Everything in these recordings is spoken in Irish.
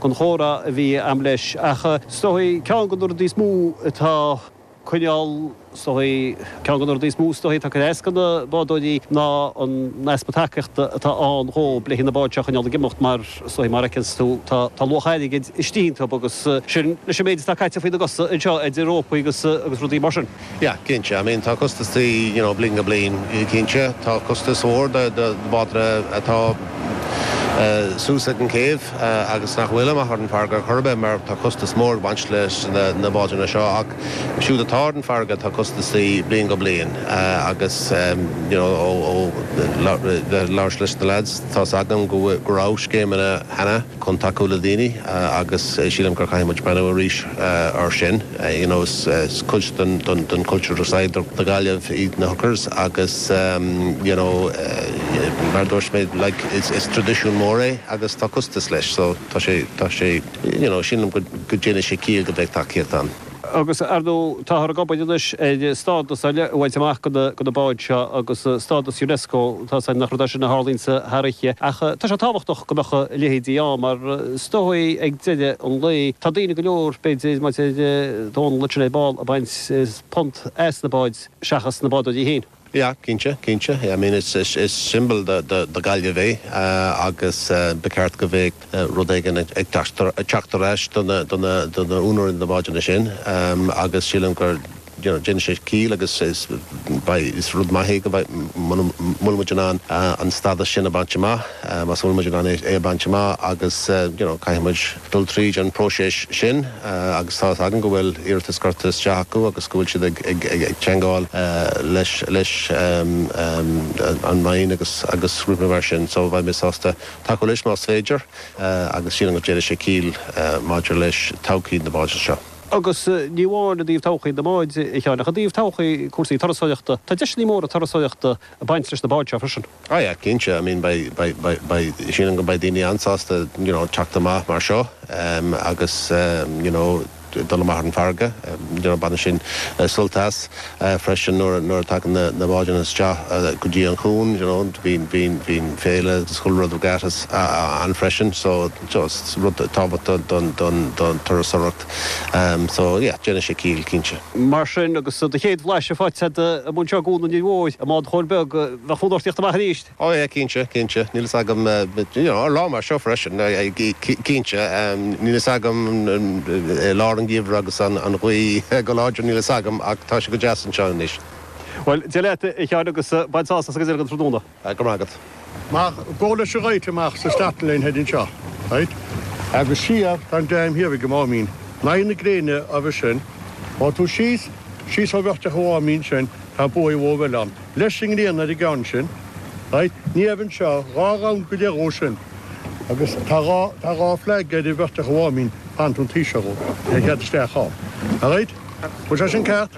gan chomhrá a bhí a'm leis ach is dóigh ceann de na rudaí is mó atá coinneáil is dóigh ceann de na rudaí is mó is dóigh atá ag cur as do na bádóirí ná an easpa tacaíochta atá ann dhóibh le haghaidh na báid seo a choinneáil ag imeacht mar is dóigh mar fheiceanns tú tá tá luach airgid istigh iontu agus sin leis an méid atá caite faoina gcosa anseo idir rópaí agus agus rudaí mar sin. Yeah, cinnte. I mean, tá costaisí, you know, bliain go bliain, cinnte. Tá costas mór do bádanna atá suas ag an céibh agus nach bhfuil amach ar an bhfarraige ar chor ar bith mar tá costas mór ag baint leis na báideanna seo ach siúd atá ar an bhfarraige tá costaisí bliain go bliain agus, you know, ó labhairt leis na lads, tá's agam go raibh scéimeanna cheana. chun tacú le daoine agus sílim gur caithfidh muid breathnú arís air sin. You know is cuid den cultúr de saol na Gaillimh iad na hookers agus you know mar a dúirt mé like is tradisiún mór é agus tá costas leis so tá sé tá sé you know sílim go déanfaidh sé ciall go mbeidh tacaíocht ann. Agus ar ndóigh, táthar ag obair anois ar stádas ar leith a bhaint amach do na báid seo agus stádas Unesco, tá's agam nach rud é sin a tharlaíonns thar oíche ach tá sé tábhachtach go mbeadh a leithéide ann mar is dóigh ag deireadh an lae tá daoine go leor, b'fhéidir mar a dúirt Dónall linn ar ball ag baint punt as na báid seachas na bádóirí féin. Yeah, cinnte, cinnte. I mean it's, is symbol do Gaillimh é agus ba cheart go mbeadh rud éigin ag teacht ar ais do na úinéirí na báideanna sin agus sílim gur, you know, déanfaidh sé ciall agus is, beidh, is rud maith é go mbeidh, má bhfuil muid in ann an stádas sin a bhaint amach, má bhfuil muid in ann é a bhaint amach agus, you know, caithfidh muid. dul tríd an bpróiseas sin agus tá a fhios againn go bhfuil iarratais curtha isteach acu agus go bhfuil siad ag teagmháil leis an Roinn agus rudaí mar sin. So bheadh mé sásta tacú leis más féidir agus sílim go ndéanfaidh sé ciall maidir leis todhchaí na báideanna seo. Agus ní amháin i dtaobh todhchaí na mbád, a Sheáin, ach i dtaobh todhchaí cúrsaí turasóireachta. Tá deiseanna móra turasóireachta ag baint leis na báid seo freisin. Oh yeah, cinnte, I mean beidh, beidh, beidh, beidh, sílim go mbeidh daoine an-sásta you know teacht amach mar seo ehm agus ehm you know dul amach ar an bhfarraige you know baineann siad sult as eh freisin nuair, nuair a tagann na, na báideanna isteach go dtí an chuan you know bíonn, bíonn, bíonn féile agus chuile rud go deas ann freisin so, you know is rud tábhachtach don, don, don turasóireacht. So, yeah, déanfaidh sé ciall, cinnte. Mar sin, agus do chéad bhlaiseadh faighte a'd i mbun seoil i gCuan an Fhir Mhóir, i mbád John Beag, bheadh fonn ort a theacht amach arís. Oh yeah, cinnte, cinnte. Níl fhios agam, but, you know, ar lá mar seo freisin, cinnte, níl fhios agam, i lár an gheimhridh agus an ghaoth go láidir, níl fhios agam, ach tá sé go deas anseo anois. Bhuel, Dia leat, a Sheáin, agus bain sásamh as an gcuid eile den tráthnóna. Tá go maith agat. Mar go leis a ghabháil amach sa starting line heading seo, right, agus siar go dtí an dream thiar ag an Máimín, in aghaidh na gréine a bhi sin, ó tú síos, síos ó Bhearteach an Mháimín sin, tá baoi mór eile ann, leis an ngréin ar an gceann sin, right, aníos anseo, dhá round go leith dhó sin, agus tá dhá, tá dhá flag ar an Bhearteach an Mháimín, pantún, an taoiseach dhó, ar chead isteach ann, alright, bhfuil sé sin ceart?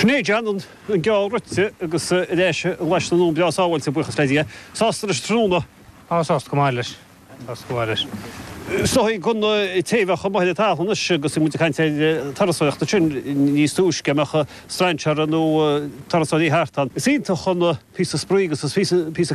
Sin é, Jan, an geallta rite agus ar ais i nglaise na ndún breá sábháilte, buíochas le Dia. Sásta leis an tráthnóna? Á, sásta go maith leis. Stócaigh na gcoinní taobhanna maithe le tamall anois agus bhí muid ag caint ar thurasóireacht ansin níos túisce, an mbeadh strainséara nó turasóirí thart ann. Is iontach an píosa spraoi agus is píosa